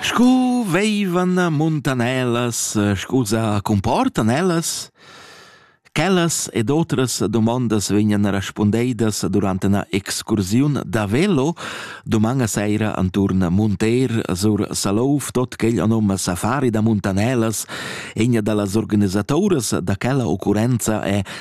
Scu veivan muntanellas, scusa, comportan ellas? Quellas ed otras domandas vegnan respundeidas durant una excursiun da velo domanga seira anturn Munter sur Salouf, tot quel anom Safari da Muntanellas. Egna da las organisatoras da quella occurrenza è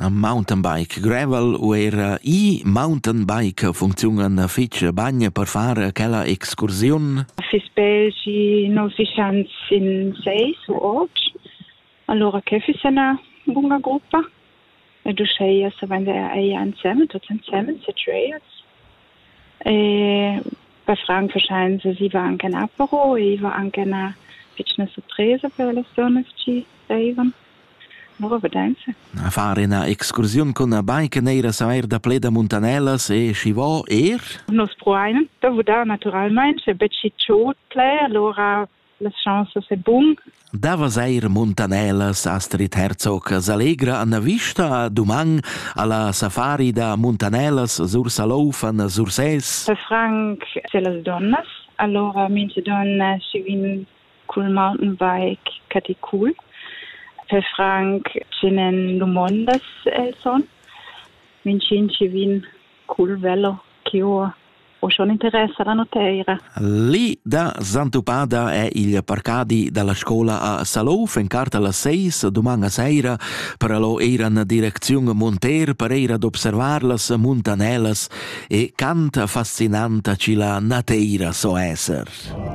Mountainbike gravel u era e-mountainbike funcziunan fich bain per far quella excursiun? Fiss be schi non fischans in seis u otg, allura que fiss üna buna gruppa. Ed uschea s'avenda eir insemen, tuots insemen, situats. E bei Frank verscheinen sie, sie war anche in Apero, ich war anche in einer pitschna Surpresa per alle Sohnes, die reisen. Far ina excursiun cun la bike neira saver daplè da muntanellas e schi vo er? Nus pruain da vudar natüralmaing e betg giò d'plè, alura las chansas e bun. Da vesair muntanellas Astrid Herzog s'allegra an la vista duman alla safari da muntanellas sur Saloufan, Sursès. Da Frank sur las donnas, alura mintga donna schi vegn cul mountainbike Caticul. Per franc tschenen dumondas el son. Minchün chi vin cul velo chi ho o schon interess alla nuteira. Lì da Sant'Upada è il parcadi dalla scola a Salouf in cart alla seis doman a seira per allo eira na direcziun monter per eira d'observar las muntanelas e cant fascinanta ci la nateira so esser. RTR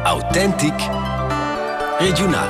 Autentic regiunal